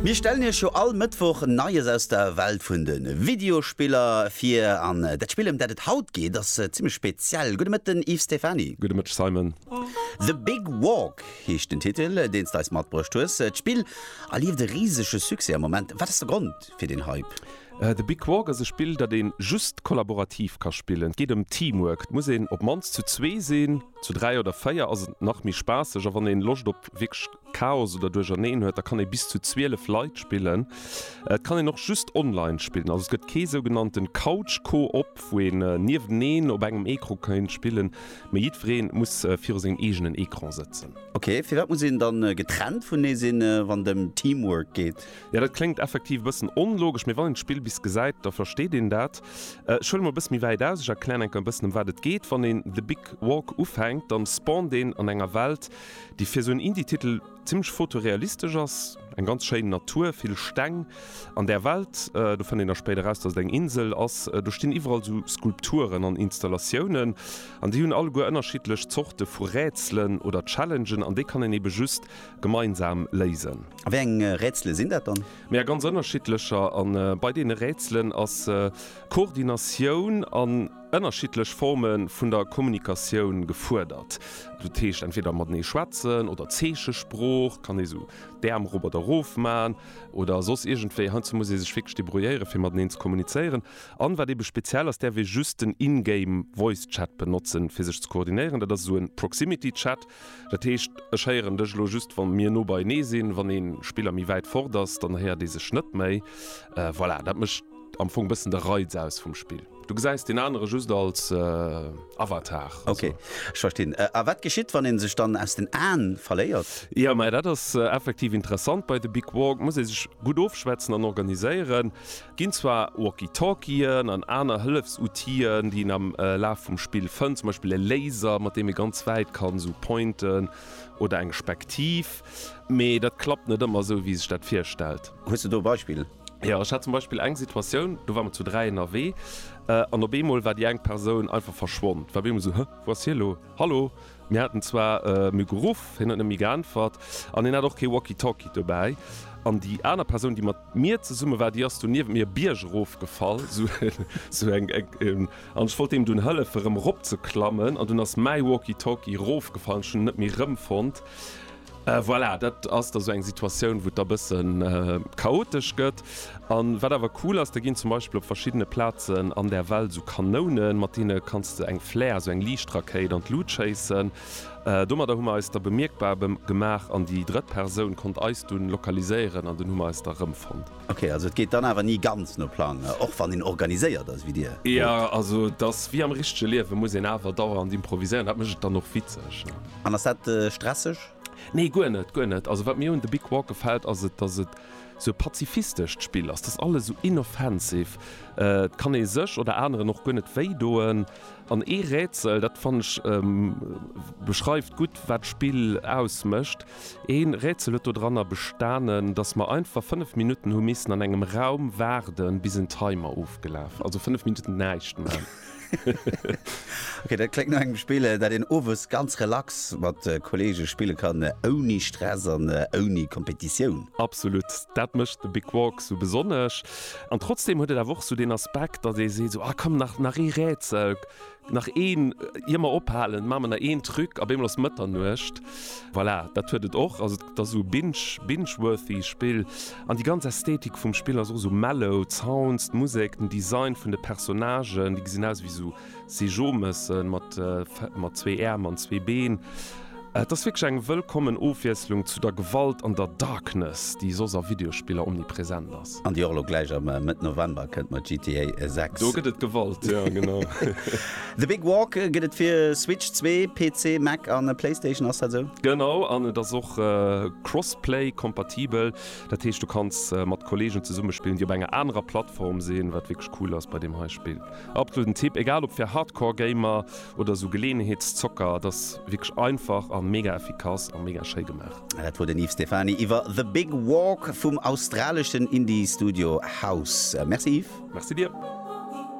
Mir stellen iech jo all Mëttwoch Neies aus der Welt vun de Videospiller vir an dat Spill ëm dat et haut geet ass zimmlech speziell. Gudde Mëtten Yves Stephany. Gudde Mëtteg Simon. The Big Walk heescht den Titel deens de eis matbruecht hues. D'Spill erlieft e risege Succès am Moment. Wat ass de Grond fir den Hype? The Big Walk ass e Spill dat een just kollaborativ ka spillen. Et geet ëm Teamwork, et muss een op mannst zu zwee sinn. Zu dräi oder véier ass et nach méi spaasseg a wann een Loscht op wierklech Chaos oder Duercherneen huet, da kann ee bis zu 12 Leit spillen. Et kann een och just online spillen, also et gëtt kee sougenannten Couch Co-op, wou een nieweneen op engem Ecran kéint spillen, mee jiddwereen muss viru sengem eegenen Ecran sëtzen. Ok, firwat muss een dann getrennt vunee sinn, wann et em Teamwork geet? Jo dat kléngt effektiv e bëssen onlogesch, mee wann een d'Spill bis gesäit, da versteet een dat. Ech huele mol e bësse méi wäit aus, ech erklären enker e bëssen ëm wat et geet. Wann een The Big Walk ufänkt, dann spawnt een an enger Welt, déi fir esou en Indie-Titel zimmlech fotorealistesch ass. Eng ganz schéin Natur, vill Steng an där Welt. Do fënnt een da spéider raus, dass et eng Insel ass. Do stinn iwwerall esou Skulpturen an Installatiounen an déi hunn alleguer ënnerschiddlech Zorte vu Rätselen oder Challengen an déi kann een eebe just Gemeinsam léisen. A wéi eng Rätsele sinn dat dann? Mee a ganz ënnerschiddlecher. A bei deene Rätselen ass Koordinatioun an ënnerschiddlech Forme vun der Kommunikatioun gefuerdert. Dat heescht entweder matenee schwätzen oder Zeechesprooch, kann ee sou d'Äerm erop oder erof man oder soss iergendwéi. Heiansdo muss ee sech wierklech debrouilléieren, fir mateneen ze kommunizéieren. An wat eebe speziell ass, däerf ee just den In-Game Voice Chat benotzen, fir sech ze koordinéieren. Dat ass esou e Proximity Chat. Dat heescht, ech héieren dech elo just, wa mir no beienee sinn. Wann ee Spiller méi wäit fort ass, dann héiert ee sech net méi. Voilà, dat mécht am Fong bëssen de Reiz aus vum Spill. Du gesäis deen anere just als Avatar. Ok, ech verstinn. A wat geschitt, wann ee sech dann aus den Aen verléiert? Jo, mä dat ass effektiv interessant. Bei de Big Walk muss ee sech gutt ofschwätzen an organiséieren. Ginn zwar Walkie-Talkien an aner Hëllefsoutien, déi een am Laf vum Spill fënnt, zum Beispill e Laser, mat deem ee ganz wäit kann esou pointen, oder eng Spektiv, mee dat klappt net ëmmer esou, wéi ee sech dat virstellt. Hues de do e Beispill? Jo, ech hat zum Beispill eng Situatioun, do ware mer zu dräi ënnerwee, an op eemol war déi eng Persoun einfach verschwonn. War op eemol esou, Huh, wou ass hie elo? Hallo? Mir haten zwar em e geruff, hien huet net méi geäntwert an hien hat och kee Walkie-Talkie dobäi. An déi aner Persoun, déi mat mir zesumme war, déi ass dunn niewent mir e Bierg erofgefall, sou eng, an ech wollt deem dunn hëllefen, erëm eropzeklammen, an dunn ass mäi Walkie-Talkie erofgefall an ech hunn en net méi erëmfonnt. Voilà, dat ass da sou eng Situatioun, wou et da bësse chaotesch gëtt. An wat awer cool ass, da ginn zum Beispill op verschiddene Plazen an der Welt sou Kanounen, mat deene kanns de eng Flare, sou eng Liichtrakéit, an d'Lut schéissen. Domadder hu mer eis da bemierkbar gemaach an déi drëtt Persoun konnt eis dunn lokaliséieren an dunn hu mer eis da rëmfonnt. Ok, also et geet dann awer ni ganz no Plang, och wann een organiséiert ass wéi Dir? Jo, also et ass wéi am richtege Liewen, muss een awer dauernd improviséieren, dat mécht et dann och witzeg. An ass dat stresseg? Nee, guer net, guer net. Also wat mir un The Big Walk gefält, ass et, datt et sou e pazifistescht Spill ass. Dat ass alles sou inoffensive. Et kann ee sech oder aneren och guer net wéi doen. An ee Rätsel, dat fannen ech beschreift gutt, wat d'Spill ausmécht. Ee Rätsel huet dodranner bestanen, datt mer einfach 5 Minutten hu missen an engem Raum waarden, bis en Timer ofgelaf. Also 5 Minutten näischt man. Ok, dat kléngt no engem Spill, dat een owes ganz relax mat Kolleege spille kann, ouni Stress an ouni Kompetitioun. Absolut, dat mécht de Big Walk sou besonnesch. An trotzdeem huet et awer och sou deen Aspekt, datt ee seet, Ah komm, nach, nach ee Rätsel, nach een, ier mer ophalen, maache mer nach een Truc, op eemol ass Mëtternuecht. Voilà, dat huet et och. ass esou binge, binge-worthy Spill an déi ganz Ästhetik vum Spill ass och esou mellow, d'Sounds, d'Musek, den Design vun de Personnagen, déi gesinn aus ewéi esou Seejomëssen mat mat zwee Äerm an zwee Been. Et ass wierklech eng wëllkommen Ofwiesslung zu der Gewalt an der Darkness, déi soss a Videospiller omnipresent ass. An déi och elo gläich am Mëtt November kënnt mat GTA 6. Do gëtt et Gewalt, jo genau. The Big Walk gëtt et fir Switch 2, PC, Mac a Playstation, ass dat esou? Genau, an et ass och crossplay kompatibel. Dat heescht du kanns mat Kolleegen zesumme spillen, déi op enger anerer Plattform sinn, wat wierklech cool ass bei deem hei Spill. Absoluten Tipp, egal ob fir Hardcore Gamer oder esou Geleeënheetszocker. Et ass wierklech einfach a mega effikass a mega schéi gemaach. Dat wor den Yves Stephany iwwer The Big Walk vum australeschen Indie-Studio House. Merci Yves. Merci dir.